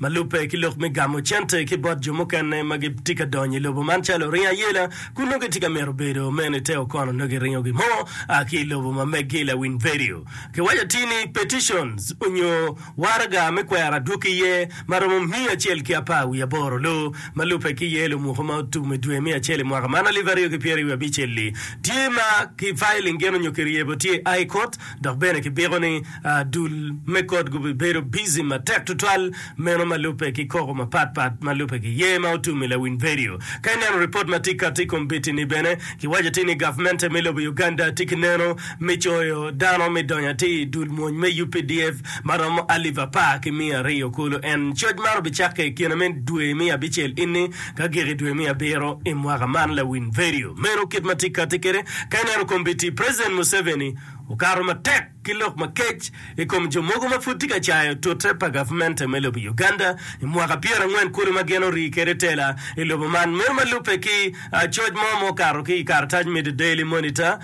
Ma lubbe ki lok me gamo cente ki bot jo mukene ma gitye ka donyo i lobo man calo oringo ayela kun nongo gitye ka mito bedo meno i te okono nongo giringo gin mo a ki i lobo ma meggi. Lawiny vedio kiwaco atir ni Petitions onyo Waraga me Kwero Adwogi Iye ma romo miya acel ki apar wiye aboro loo ma lubbe ki iye lumuko ma otum i dwe me acel i mwaka man alip aryo ki pyeraryo wiye abicelli tye ma ki filing gin onyo ki ryebo tye i High Court Dok bene kibiko ni dul me kot gubibedo bici matek tutwal, meno ma lubbe ki koko mapat pat ma lubbe ki yer ma otum i lawiny vedio. Ka ineno ripot ma tye kati i kom biti-ni bene, kiwaco atir ni gavmente me lobo Uganda tye ki neno me coyo dano me donyo atir i dul mwony me UPDF ma romo alip apar ki miya aryo kulu. En coc man obicakke i kine me dwe me abicel ini ka gik i dwe me abiro i mwaka man. Lawiny vedio meno kit ma tye kati kede. Ka ineno kom biti, President Museveni. okato matek ki lok makec i kom jo mogo ma pud tye ka cayo tute pa gavmente me lobo Uganda i mwaka pyerangwen kulu ma gin orii kwede tela i lobo man. Meno ma lubbe ki coc mo ma okato ki i karatac me The Daily Monitor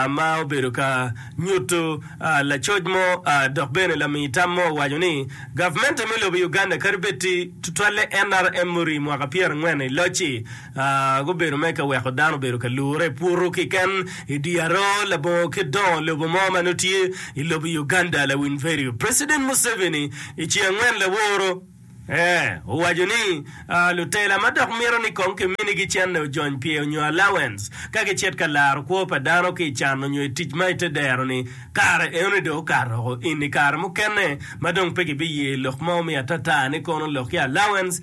ma obedo ka nyuto lacoc mo dok bene lami tam mo owaco ni gavmente me lobo Uganda kadi bed ti tutwalle NRM murii mwaka pyerangwen i loc-ci, Gubedo me ka weko dano obedo ka lure puru kiken i dye aroo labongo kit dongo lobo mo ma nongo tye i lobo Uganda lawiny vedio. President Museveni i ci angwen laworo owaco ni lutela ma dok mito ni kong ki minigi cene ojony pye onyo allowance ka gi cit ka laro kwo pa dano ki i can onyo i tic ma i te dero ni kare eno ni dong okato oko in i kare mukene ma dong pe ki bi ye lok ma omiyo atata ni kono lok ki allowance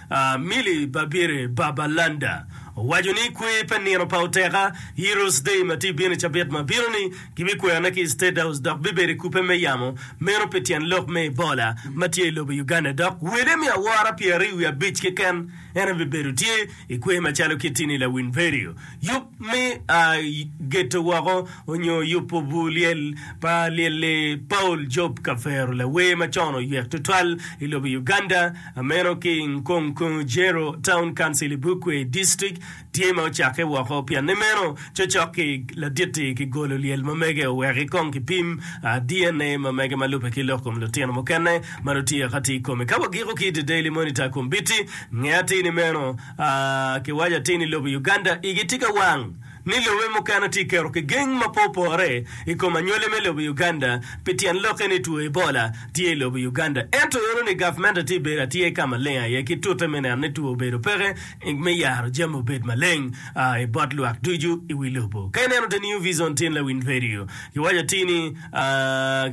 Milly Babirye Babalanda owaco ni kwer pa nino pa Oteka, Heroes Day, ma tye bino i cabit ma bino-ni, gibikweyone ki i State House dok bibedo i kubbe me yamo meno pi tyen lok me Ebola ma tye i lobo Uganda dok wele miya awora pyeraryo wiye abic keken en aye bibedo tye i kwer macalo kit-ti ni Lawin Verio. me a i geto woko onyo yubo bur lyel pa lyel-li. Paul Job Kafero, lawer ma con oyek tutwal i lobo Uganda, a meno ki i Nkongkongojero Town Council i Bukwe District, tye ma ocakke woko pianne meno cocok-ki ladit-ti ki golo lyel ma mege oweki kong ki pim a DNA ma mege ma lube ki lok kom lutino mukene ma dong tye ka ti kome. Ka wagiko ki i The Daily Monitor kombiti, nge atir ni meno Kiwaco atir ni lobo Uganda igi tye ka wang ni lobe mukene tye keto ki geng ma pe opore i kom anywale me lobo Uganda pi tyen lokke ni two Ebola tye i lobo Uganda ento yero ni gavmente tye bedo atyer ka maleng aye ki tute me neno ni two obedo peke me yaro jami obed maleng i bot lwak ducu i wi lobo. Ka ineno the new vision tin lawiny radio kiwaco atir ni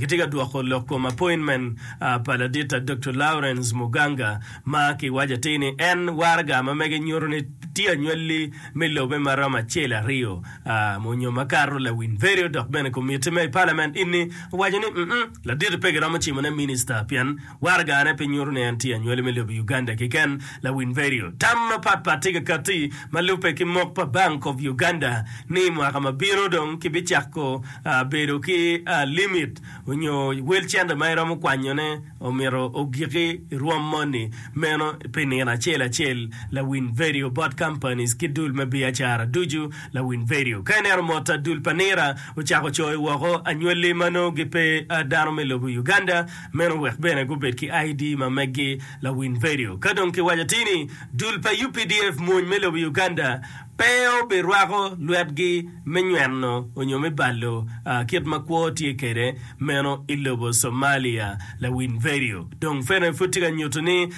kitye ka dwoko lok kom appointment pa ladita Doktor Lawrence Muganga Ma kiwaco atir ni en waraga ma mege nyuto ni tye anywalli me lobe ma romo acel, aryo, a onyo ma kato lawiny vedio dok bene komitti me i palament ini owaco ni mm laditi pe giromo cimo ne minista pien waraga ne pe nyuto ni en tye anywali me lobo Uganda kiken. Lawiny vedio tam mapat pat tye ka katti ma lube ki mok pa bank of Uganda ni mwaka ma bino dong ki bicako a bedo ki a limit onyo wel cente ma iromo kwanyone omito ogiki i rwom moni meno pi nino acel acel lawiny vedio bot companies ki dul me biacara ducu lawiny vedio ka ineno mot a dul pa nira ocako coyo woko anywali ma nongo gi pe a dano me lobo Uganda meno wek bene gubed ki ID ma meggi lawiny vedio ka dong ki waco tini dul pa updf mwony me lobo Uganda pe obirwako lwetgi me nyweno onyo me balo kit ma kwo tye kede meno i lobo Somalia, Lawin Verio dong fene pud tye ka nyutu ni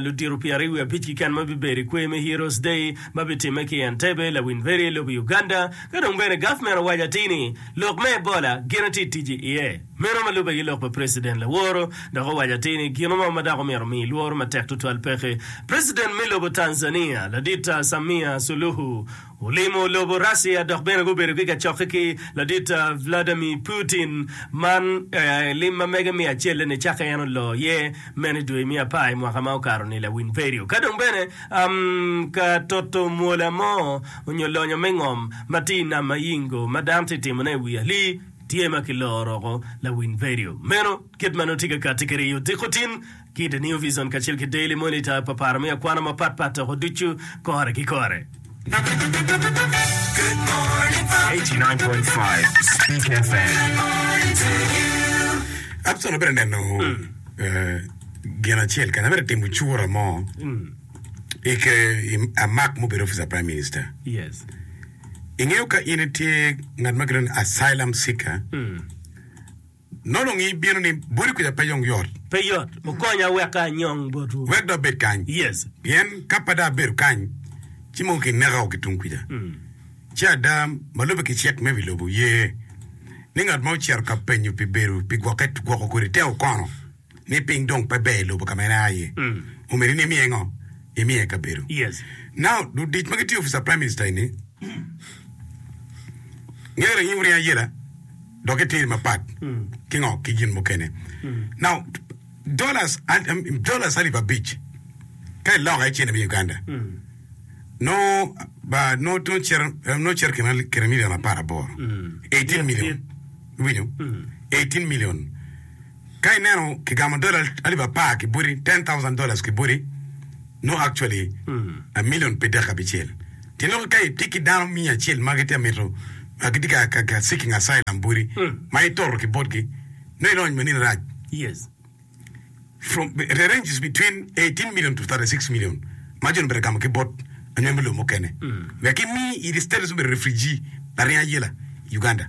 ludito pyeraryo wiye abic kiken ma bibedo i kwer me Heroes Day ma bitime ki i Entebbe, Lawin Verio i lobo Uganda, ka dong bene gavment owaco atir ni lok me Ebola gine tye i tic iye. Meno ma lubbe ki lok pa President Laworo dok owaco atir ni gino mo ma dako myero omi lworo matek tutwal peke. President me lobo Tanzania ladit Samia Suluhu olimo lobo Russia dok bene gubedo ki kacokke ki ladit Vladimir Putin man lim ma mege me acel-le ni cakke en olo iye meno i dwe me apar i mwaka ma okato ni lawiny perio ka dong bene ka toto mwola mo onyo lonyo me ngom ma tye i nam ma Yingo ma dano tye timone i wi ali Tye ma kiloro roko lawiny vedio meno kit ma nongo tye ka katti ki riyo odiko tin ki The New Vision kacel ki Daily Monitor pa paro me akwana mapat pat toko ducu kore ki kore. Absalom bedo neno gin acel kanya bedo timo cura mo i amak mubedo officer prime minister. Ingeyo ka in itye ngat ma gilwongo ni asylum seeker, nonongi ibino ni boti kuca pe yong yot. Pe yot. Wukonya wek anyong botwu. Wek dong abed kany. Yes. Pien ka pe dong abedo kany, ci mono kineka o ki tung kuca. Ci ada ma lubbe ki cik me wi lobo ye ni ngat ma ocito ka penyo pi bedo pi gwokke gwoko kodi te okono. ni piny dong pe ber i lobo ka ma en a iye, omyero in imiye ngo? Imiye kabedo. Now, ludic ma gitye i office pa Prime Minister eni ngeyo ranying muryang ayela dok gitiri mapat ki ngo? Ki gin mukene. Now, dollars, dollars alip abic ka iloko aye cente me Uganda nongo ba nongo cito nongo cito kine kine million apar aboro, eighteen million, iwinyo? Eighteen million. Ka ineno kigamo dola alip apar ki boti, ten thousand dollars ki boti, nongo actually a million pe dek abicel. Ti nongo ka itye ki dano miya acel ma gitye ka mito, ah, gitye ka- ka- ka seeking asylum boti, ma itoro ki botgi, nongo ilony ma nini rac? Yes. From, the range is between eighteen million to thirty six million ma jo-ni obedo ka gamo ki bot anywem me lobo mukene. Wek imi i status me bedo refugee laryeny ayela i Uganda.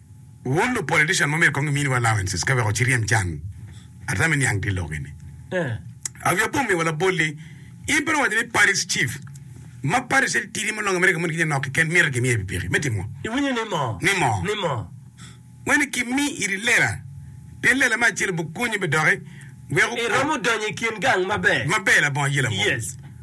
Wun lu politician ma myero kong iminiwa allowances ka wek waciryem can ata me niang ki lok eni. Avia Bum miwa labol ni in pe iwaco ni party's chief ma party cel tidi ma olongo America moni ki nyo nok kiken myero gimiye pikipiki me timo Iwinyo ni mo? Ni mo? Ni mo? Wene ki mi iri lela pien lela me acel obukonyi me doki wek I romo donyo ikin gang maber. Maber labongo aye labongo. Yes.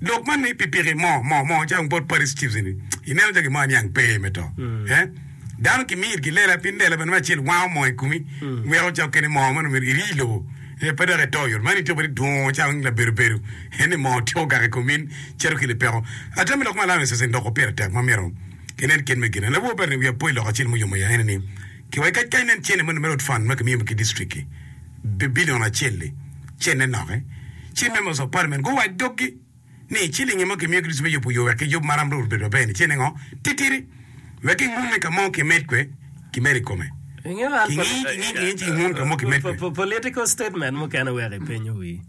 Lok man ni pikipiki mo mo mo calo wong bot Paris Chiefs eni, ineno calo gin mo aniang pe me to. He? Dano kimiyo itgi lela, pien lela bene me acel wango moo i komi, weko cok kene moo man omyero iri i lobo, he, pe dok ito i ot. Man ityeko bene idwongo calo weng labedo bedo, he, ni moo tyeko gak i komi in cito ki lipeko. Atamo ni lok ma Alaonius Soseni odoko pire tek ma myero kinen kit me gine. Lawor bati ni wi apo i lok acel muyomo ya ene ni, kiwa ki kackanen cene ma nongo mere ot fund ma kimiyo ki district-ti, Babilon Acel-li cente noke, ci me Mezo Parmen guwac doggi ni, I cilingi ma kimiyo Kricito me yubo yo wek kiyub maram Rwot obed maber-ni cente ngo? Titidi, wek kingun ni ka mo kimed kwe, kimed i kome. Kingi, kingi, kingi, ci kingun ka mo kimed kwe. Political statement mukene wek ipenyo wi.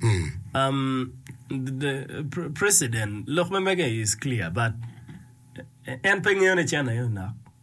Um, the president, lok me mege is clear, but en pe ngeyo ni cente aye onok.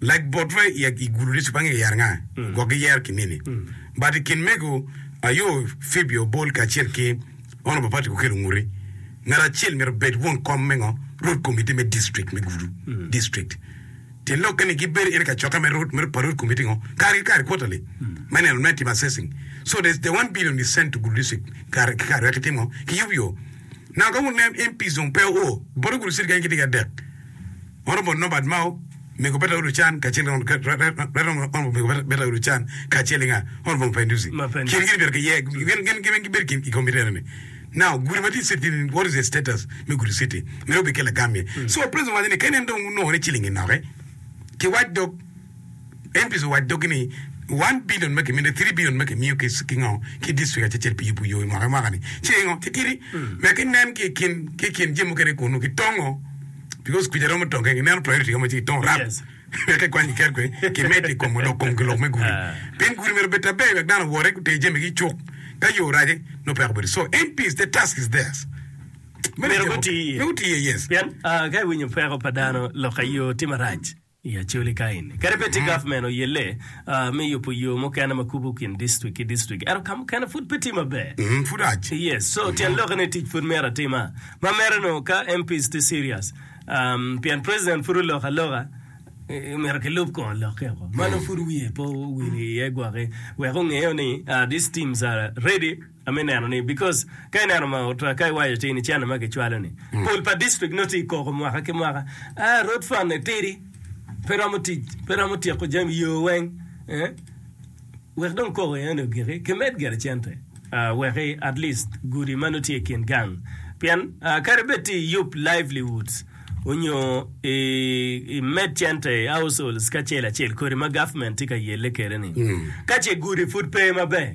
Lag bot wa i gulu ducu bang yero anga? Gwok giyero ki mini but i kin mego ayo Phoebe Obol kacel ki Ono Papati Kukelo Nguri. Ngat acel myero obed won kom me ngo? Rwot Komitti me District me Gulu, District. Tyen lokke ni gibedo in kacoka me rwot me pa rwot komitti ngo? Kare ki kare, quarterly, me neno me timo assessing. So there's the one billion is sent to Gulu District kare ki kare wek ki tim ngo? Ki yub yo. Now ka wun nen MPs dong pe oo, bote Gulu District keken gitye ki adek. Mot omot Norbert Mao, mego Berta Ulucan, kacel ki Ronald Reagan, Reagan omot omot mego Berta Ulucan, kacel ki nga? Hon. Von Paendusi. Kingi gin obyelo kiye, gin gin gin weng gibedo ki i kombeddi enoni. Now, gudi ma tye i city ni, what is the status me gudi city? Myero obed ki lagam iye. So, President owaco ni kene en dong onongo ni ciling-ngi noke ki wac dog, Empiso owaco doggi ni, One billion ma kimine, three billion ma kimiyo ki ki ngo ki district acecel pi yubu yo i mwaka ki mwaka ni ce ingo titidi me ki nen ki kin ki kin jami mukene kunu ki tongo because kuca romo tong keken ineno priority romo ci ki tongo rap me ki kwany ki ker kwe ki medo i kom lok kom ki lok me gudi pien gudi myero obed aber wek dano owore gutee jami gi cuk ka yo orace no peko bedo so MPs the task is theirs Meno Myero jami guti iye. mukene. Me guti iye yes Pien ah, ka iwinyo peko pa dano lok aye yo tye marac. i Acholi kaeni. Kadi bed tye gavmen oyelle me yubo yo mukene ma kubo kin distrik ki distrik, ento ka mukene pud pe tye maber. Pud rac. Yes, so tyen lokke ni tic pud myero atima. Ma mere no ka MPs tye serious, pien president pud oloko aloka, myero kilub kor lokke oko. Ma nongo pud wiye pe owil iye gwok-ki wek ongeo ni these teams are ready. me neno ni because ka ineno ma otra ka iwaco cing ni cene ma kicwalo ni mm. pol pa district no ti koko mwaka ki mwaka ah road fund ne tidi pe romo tic pe romo tyeko jami yo weng eh? wek dong koko ene ogiki kimed gere cente uh, weki at least gudi ma nutye i kin gang pien uh, kare bed ti yup livelihoods onyo i, i med cente households kacel acel kodi ma government ti ka yelle kere ni mm. ka ce gudi pud pe maber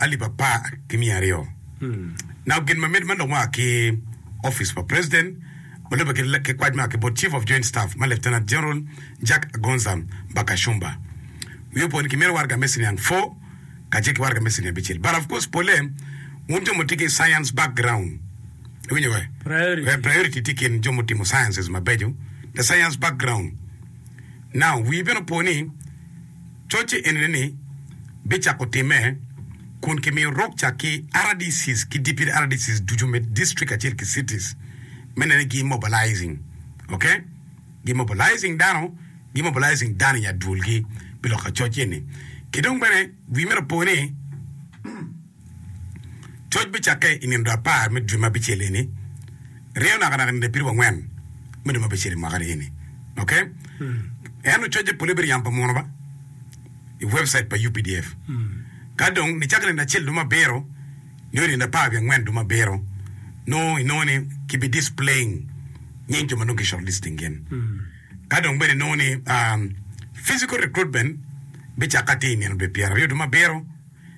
alip apar ki miya aryo nao gin ma miti ma lok mua ki Opic pa President ma lubbe ki kwac mua ki bot Chief of Joint Staff ma Lieutenant General Jack Agonza Mba Kashumba. Wiye opo ni ki miti waraga me siniang four kacel ki waraga me siniang abicel but of course pole wun jo mutye ki science background iwinyo wa eh, priority tye kin jo mutimo sciences mabeco the science background. Now wii bene opo ni Cocce enini ni bicako timme kun kimiyo rukca ki RDCs ki Deputy RDCs ducu me district kacel ki cities me neno ni gi mobilizing ok gi mobilizing dano gi mobilizing dano i nya dwolgi pi lok ka cocce eni. Ki dong bene wi mere opo ni. Coc bicakke i nino apar me dwe ma bicel eni, ryeyo nakanaka nino abiriwa angwen me dwe ma bicel i mwaka-ni eni. Ok? Ento cocce pole bedo yam pa muno ba i webcait pa UPDF. Ka dong nicako nino acel duma abiro nio nino apar wiye angwen duma abiro, nongo inongo ni kibi displaying nying jo ma dong ki shortlisting gin. Ka dong bene inongo ni physical recruitment bicakke atir i nino dwe pyeraryo duma abiro,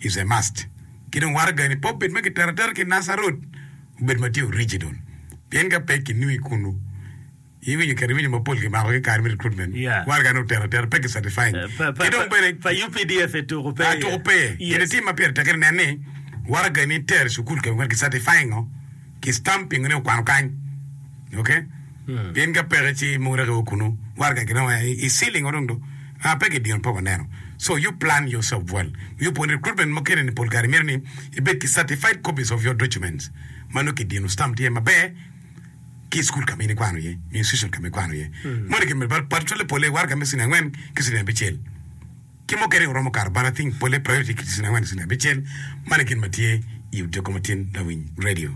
is a must ki dong waraga ni pe obed ma kitero atera ki Nasser Road obed ma tye original pien ka pe ki nongo i kunu i winyo kit iwinyo mapol ki mako ki kare me recruitment Yeah. waraga ni otero atera pe ki certifying Pa- pa- ki dong bene pa- pa UPDF e tuku pe Ah, tuku pe. Yes. Gin itimo ma pire tekke ni nen ni waraga ni itero i cukul keken ki certifying o. ki stamp pingo ni okwano kany ok in ka peke ci mogo rek io kunu warga gin o i ceiling o dong do aa pe ki dino pe waneno so you plan yourself well you put recruitment ma kene ni pol kare myero ni ibed ki certified copies of your documents ma nongo ki dino stamp tye maber ki school ka ma in ikwano iye nyo institution ka ma ikwano iye moni ki medo bal twale pole warga me cini angwen ki cini abicel. ki mukene oromo kato bal ating pole prayo ki cicin angwen nicici abicel, man e gin ma tye i Odiko Matin Lawiny Radio.